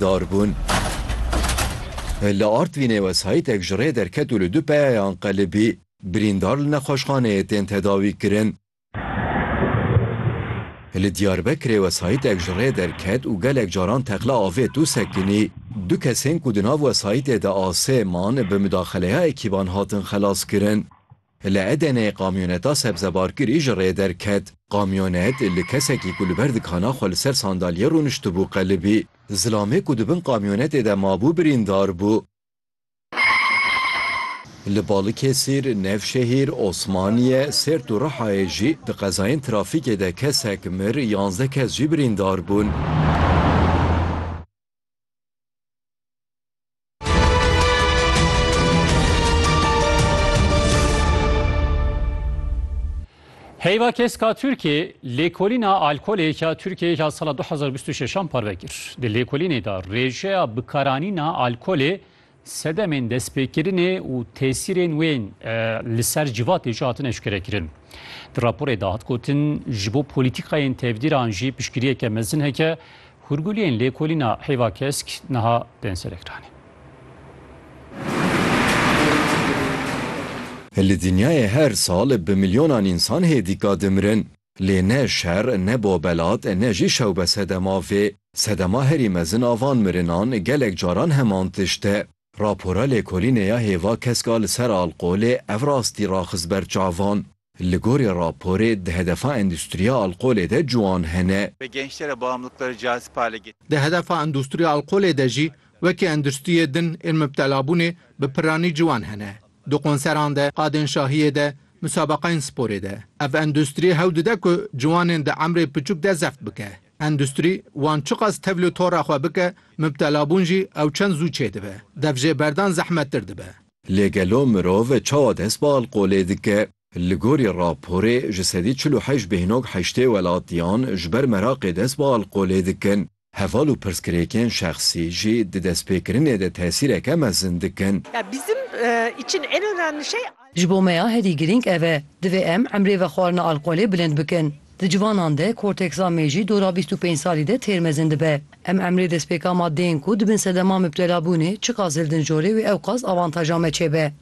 darbûn. Li Artvînê wesayîtek ji rê derket û li du peyayan qelibî, birîndar li nexweşxaneyê tên tedawîkirin. Li Diyarbekirê wesayîtek ji rê derket û gelek caran teqla avêt û sekinî. Du kesên ku di nav wesayîtê de asê man, bi mudaxeleya ekîban hatin xelaskirin. Li Edeneyê kamyoneta sebzebarkirî ji rê derket. Kamyonet li kesekî ku li ber dikana xwe li ser sandalyê rûniştibû qelibî. Zilamê ku di bin kamyonetê de mabû birîndar bû. Li Balikesir, Nevşehîr, Osmaniye, Sêrt û Rihayê jî di qezayên trafîkê de kesek mir, yanzdeh kes jî birîndar bûn. Heyva keska Türkiye lêkolîna alkolê ya Türkiye ya sala 2026 parve kir. Di lêkolînê de rêjeya bikaranîna alkolê Sedemên destpêkirinê û tesîrên wê li ser civatê jî hatine eşkerekirin. Di raporê de hat gotin, ji bo polîtîkayên tevdîran jî piştgiriyeke mezin heke, hûrguliyên lêkolîna hêva kesk niha tên serekiranê. Li dinyayê her sal bi milyonan însan hêdîka dimirin. Lê ne şer, ne bobelat, ne jî şewbe sedema vê. Sedema herî mezin a van mirinan gelek caran heman tişt e. Rapora lêkolînê ya hêva keska li ser alqolê ev rastî raxist ber çavan. Li gorî raporê di hedefa endûstriya alqolê de ciwan hene. Ve gençlere bağımlılıkları cazip hale getirdi. Di hedefa endûstriya alqolê de jî wekî endûstriyê din ên mubtelabûnê bi piranî ciwan hene. Di konseran de, qadên şahiyê de, musabaqeyên sporê de ev endustrî hewl dide ku ciwanên di emrê piçûk de zeft bike. Endustrî wan çiqas tevlî tora xwe bike, mibtelabûn jî ew çend zû çêdibe. Dev jê berdan zehmettir dibe. Lê gelo mirov çawa dest bi alkolê dike? Li gorî raporê ji sedî çil û heşt bêhnog heştê welatiyan ji ber meraqê dest bi alkolê dikin. Heval û pirsgirêkên şexsî jî di destpêkirinê de tesîreke mezin dikin. Ji bo me ya herî girîng ev e. Divê em emrê vexwarina alkolê bilind bikin. Di civanan de korteksa mêjî dora bîst û pênc salî de têr mezin dibe. Em emrê destpêka maddeyên ku di bin sedema mibtelabûnê çiqas zildin jorê wê ewqas avantaja me çêbe.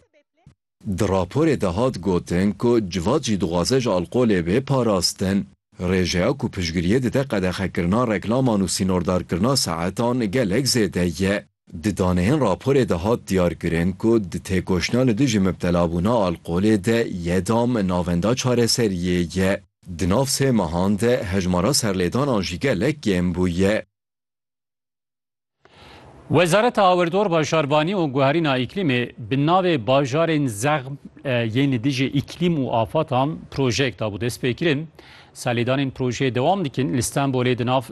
Di raporê de hat gotin ku Civat jî dixwaze ji alkolê bê parastin. Rêjeya ku piştgiriyê dide qedexekirina reklaman û sînordarkirina saetan gelek zêde ye. Di daneyên raporê de hat diyarkirin ku di têkoşîna li dijî mibtelabûna alkolê de YEDAM navenda çareseriyê ye. Di nav sê mehan de hejmara serlêdanan jî gelek kêm bûye. Wezareta Awirdor Bajarbanî û Guherîna Îklîmê bi navê Bajarên Zexm yên li dijî îklîm û afatan projeyek dabû destpêkirin. Serlêdanên projeyê dewam dikin. Li Stenbolê di nav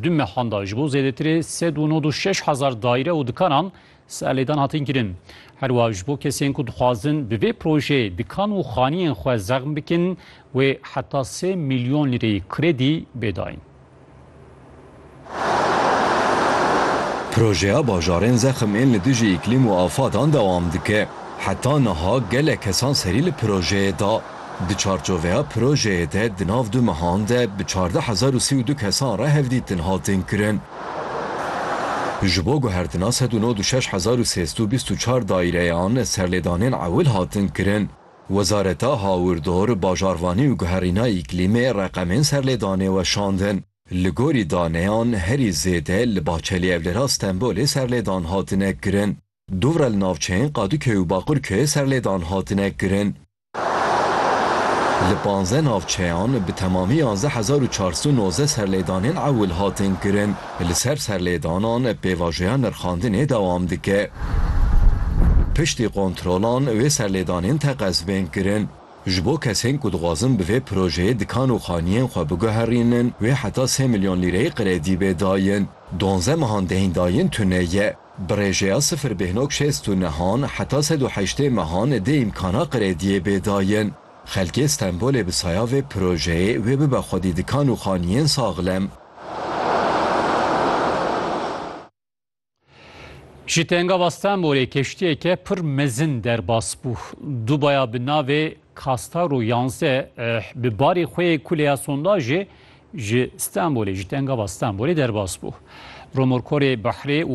du mehan de ji bo zêdetirê sed û nod û şeş hezar daîre û dikanan serlêdan hatin kirin. Her wiha ji bo kesên ku dixwazin bi vê projeyê dikan û xaniyên xwe zexm bikin wê heta sê milyon lîreyî kredî bê dayîn. Projeya bajarên zexm ên li dijî îklîm û afadan dewam dike. Heta niha gelek kesan serî li projeyê da. Di çarçoveya projeyê de di nav du mehan de bi çardeh hezar û sî û du kesan re hevdîtin hatin kirin. Ji bo guhertina sed û nod û şeş hezar û sêzdû bîst û çar daîreyan serlêdanên ewil hatin kirin. Wezareta Hawirdor, Bajarvanî û Guherîna Îklîmê reqemên serlêdanê weşandin. Li gorî daneyan herî zêde li Bahçelî Evlera Stenbolê serlêdan hatine kirin. Dûvre li navçeyên Qadûköyê û Baqurköyê serlêdan hatine kirin. Li panzdeh navçeyan bi temamî yanzdeh hezar û çar sed û nozdeh serlêdanên ewil hatin kirin. Li ser serlêdanan pêvajoya nirxandinê dewam dike. Piştî kontrolan wê serlêdanên teqez bên kirin. Ji bo kesên ku dixwazin bi vê projeyê dikan û xaniyên xwe biguherînin wê heta sê milyon lîreyê kredî bê dayin. Duanze mehan deyndayên tune ye. Bi rêjeya sifir bêhnok şêst û nehan heta sed û heştê mehan dê îmkana krediyê bê dayin. Xelkê Stenbolê bi saya vê projeyê wê bibe xwedî dikan û xaniyên saxlem. Ji Tengava Stenbolê keştiyeke pir mezin derbas bû. Du baya bi navê Kastar û Yanze eh, bi barê xwe yê kuleya sondajê ji Stenbolê, ji Tengava Stenbolê derbas bû. Romorkorê Bahrê û